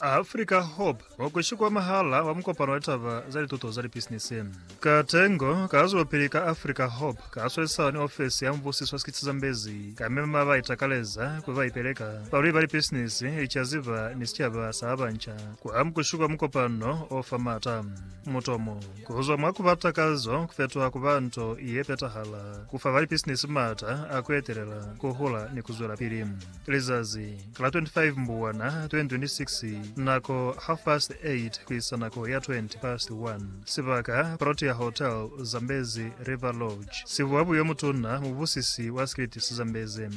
Africa Hub wa ku shikwamahala wa mukopano wa litaba za lituto za lipisinisi. Katengo ka zwelopili ka Africa Hub ka swalisana ni ofesi ya mubusiso wa sikiti sa Zambezi ka mema ba itakaleza kuli ba ipeleka, balweli ba lipisinisi, licaziba ni sicaba sa ba banca ku amu ku shikwa mukopano o fa mata. Mutomo. Kuzwa mwa kuba takazo kufetuha kuba nto yepetahala, kufa balipisinisi maata a kuetelela, kuhula, ni kuzwelapili. Lizazi la 25 Mbwana 2026, nako half past 8 kuisa nako ya 20 past 1, sibaka, Protea Hotel, Zambezi River Lodge, sibuwa buyo mutuna mubusisi wa Skiltis Zambezi.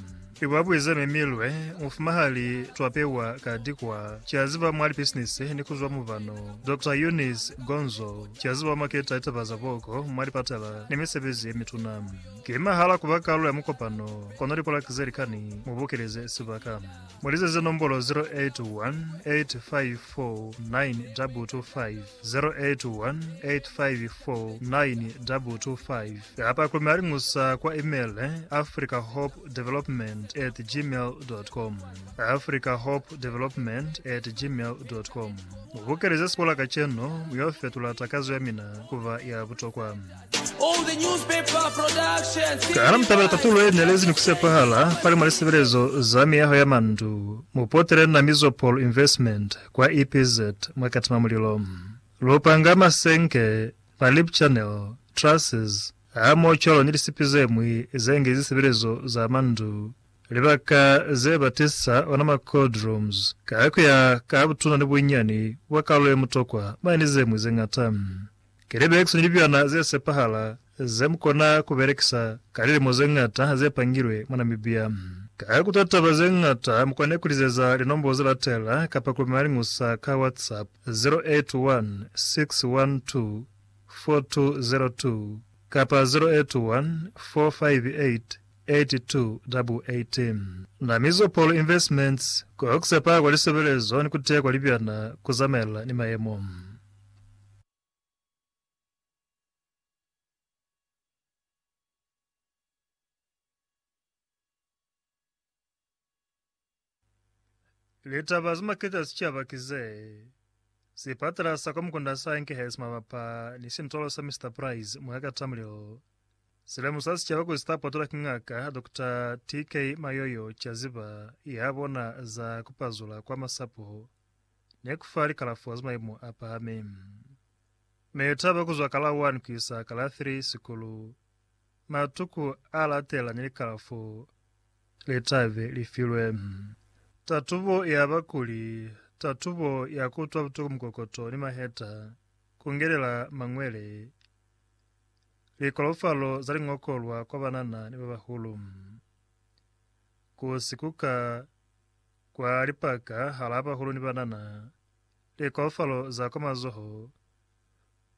I ba buize mi milwe mufuma ha li twapewa ka dikwa ki a ziba mwa lipisinisi ni ku zwa mubano. Doctor Eunice Gonzo ki a ziba mwa keta litaba za boko mwa lipatala ni misebezi ye mituna. Ki mahala ku ba kalulo ya mukopano kono lipolaki ze likani mu bokeleze sibaka. Mu lizeze nombolo 0818549225. 0818549225 kapa ku malingusa kwa email africahopedevelopment at gmail.com africahopedevelopment at gmail.com mubukelize sikola kacenu muyo fetula takazo ya mina kuba ya butokwa All the newspaper productions. Kana mutabela tatulo ye nelezi ni kusepahala falima lisebelezo za miyaho ya mandu. Mupotele Namizo Paul Investment Kwa EPZ mwa Katima Mulilo, lupanga, masenke, ma lip channel, trusses, hamoho cwalo ni lisipi ze ñwi ze nge zisebelezo za mwa ndu, libaka ze ba tisa ona ma cold rooms, ka ku ya ka butuna ni bunyani bwa kalulo ye mutokwa, mwa ni ze ñwi ze ñata. Ki libekisi ni libyana ze sepahala ze mu kona ku belekisa ka lilimo ze ñata ze pangilwe mwa Namibia. Ka ku ta taba ze ñata, mu kone ku lizeza linombo ze latela kapa ku lumela liñusa ka WhatsApp, 0816124202 kapa 0814588288. Namizo Paul Investments, Ku sepa kwa lisebelezo ni ku teya kwa libyana ku zamaelana ni mayemo. Litaba ze maketa za sicaba ki ze, Sipatala sa kwa mukunda sa Enkehesi mabapa ni sintolo sa Mister Price mwa ka Tamrill si lemusa sicaba kuli sita potolwa ki ngaka Dr. TK Mayoyo Chaziba ya bona za kupazula kwa masapo. ne ku fa likalafo za maimo a pahami. Mi li taba ku zwa ka la 1 ku isa ka la 3 sikulu, matuku a latela ni likalafo le ta be li filwe. Tatubo ya bakuli, tatubo ya ku utwa butuku mukokoto ni maheta, ku ngelela mañwele, likolofalo za liñokolwa kwa banana ni ba bahulu, ku sikuka, kwa lipaka halaa bahulu ni banana, likaufalo za kwa mazoho,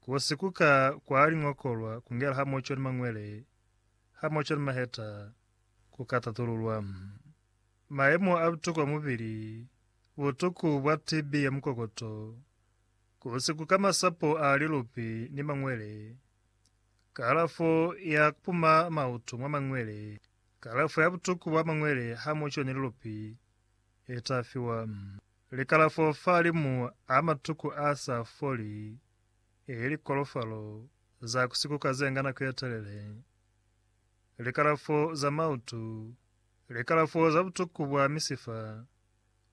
ku sikuka kwa liñokolwa, ku ngela hamoco ni mañwele, hamoco ni maheta, ku ka tatululwa. Mayemo a butuku a mubili, butuku bwa TB ya mukokoto, ku sikuka masapo a lilupi ni mañwele, kalafo ya kupuma mautu mwa mañwele, Kalafo ya butuku bwa mangwele ha mu coni lilupi e ta fiwa. Likalafo fa limu a matuku a sa foli, e likolofalo za ku sikuka ze nga nako ye telele, likalafo za mautu, likalafo za butuku bwa misifa,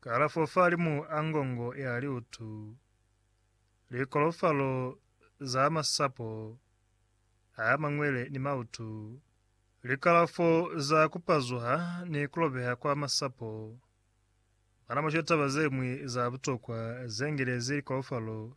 kalafo fa limu a ngongo ya liutu, likolofalo za masapo a mangwele ni mautu, Likalafo za ku pazuha ni ku lobeha kwa masapo. Bana mwa shweta taba ze ñwi za butokwa ze ngelezi likaufalo.